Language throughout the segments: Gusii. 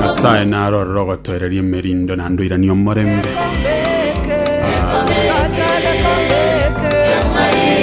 nyasaye narorere ogotoereria emerindo naende oiranie omorembe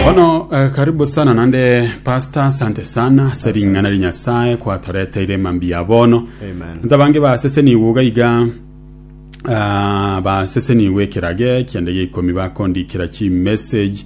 bono eh, karibu sana naende pastor asante sana ase ring'ana ri nyasaye kwatoreteire mambi ya bono Amen. nta bange baseseniwe iga iga ah, baseseniwe ekeraga ekiende gia ikomi bakondikera chimessage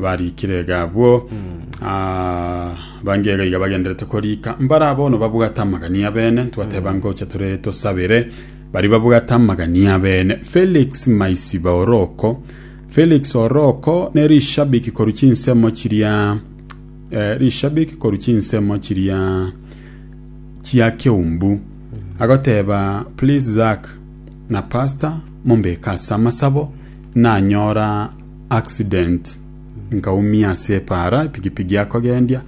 Barikire iga abwo, ah, bange iga iga bagenderete korika. Mbare abono babwate amagania bene, twateba ngocha tore tosabere. Bari babwate amagania bene. Felix Maisiba Oroko. Felix Oroko ne rishabiki koru chinsemo chiria eh, rishabiki koru chinsemo chiria chia Keumbu agoteba please Zack na pastor mumbeke ase amasabo nanyora accident nkaumia ase epaara epigipigi akogendia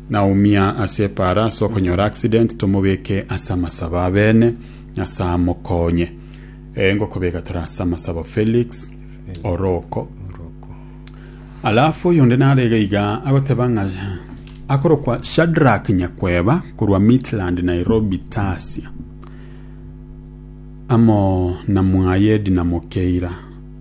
naumia ase epaara ase okonyora accident tomobeke ase amasabo abene nyasaye amokonye eh, ngokobeka tore ase amasabo Felix oroko alafu oyonde nare iga iga agoteba ng'a akorokwa Shadrack Nyakweba korwa Midland Nairobi Tasia amo na mwaye Edna Mokeira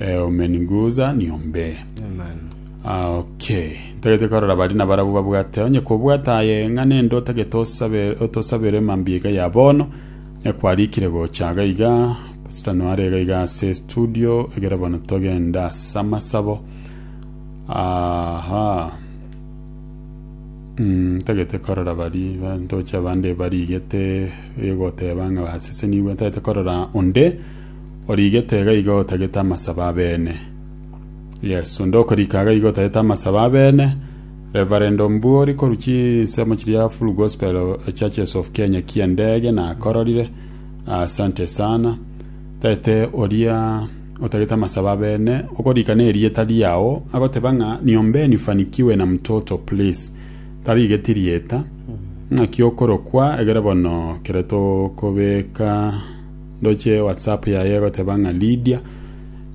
Eh, umeniguza niombe. Amen. Ah, okay. Ntagete korora bari na barabwo babwate. Onye kobwata aye ng'a nende otagete osabe otosabere mambi iga ya bono. E kwarikire gocha iga iga. Pastor Noare iga iga ase studio. Egere bono togenda ase amasabo. Aha. Mm, ntagete korora bari ba- ntoche abande barigete egoteba ng'a basesenigwe ntagete korora onde Origete iga iga otagete amasabo abene. Yes, onde okorika iga iga otagete amasabo abene. Reverend Ombuori korwa chinsemo chiria Full Gospel Churches of Kenya ki'endege nakororire. Asante sana. Tagete oria otagete amasabo abene okorika na erieta riao agoteba ng'a niombeni ufanikiwe na mtoto please. Tarigeti rieta. Ng'aki okorokwa egere bono kere tokobeka Ndoche WhatsApp yaye egoteba ng'a Lydia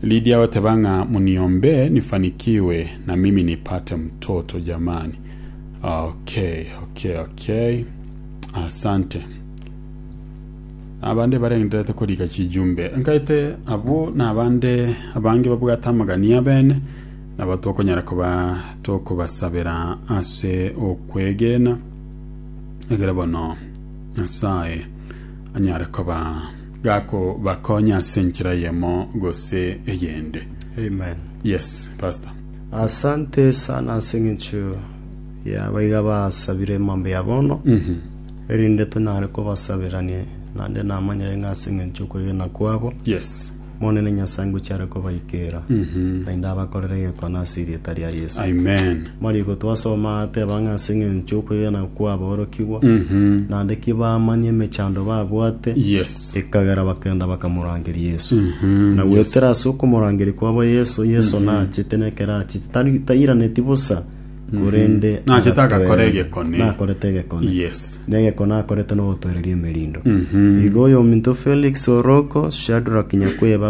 Lydia agoteba ng'a muniombee nifanikiwe na mimi nipate mtoto jamani okay okay okay asante abande barengeterete korika chijumbe nkaete abwo na abande abange babwate amagani abene nabo tokonyara koba tokobasabera ase okwegena egere bono nyasaye anyare koba gakobakonya ase enchera eyemo gose eyende. Amen. Yes, Pastor. Asante sana ase eng'encho ya baiga basabire emambe ya bono, erinde tonyare kobasaberanie. Naende namanyire ng'a ase eng'encho y'okwegena kwabo, Yes. Monene Nyasae ngochia are kobaikera, naende abakorere egekone ase erieta ria Yeso. Amen. Mariko twasoma ateba ng'a ase eng'encho y'okwegena kw'aborokigwa, Mhm. naende ki bamanya emechando babwate, Yes. ekagera bakenda bakamorangeria Yeso. Mhm. Na goetera ase okomorangeria kwabo Yeso, Yeso nachete na ekero achete, tari- tairaneti bosa, korende Mm. Nachete agakora agatwera- egekone. nakorete egekone Yes. na egekone akorete nogotwereria emerindo Mhm. igo oyominto felix oroko shadrack nyakweba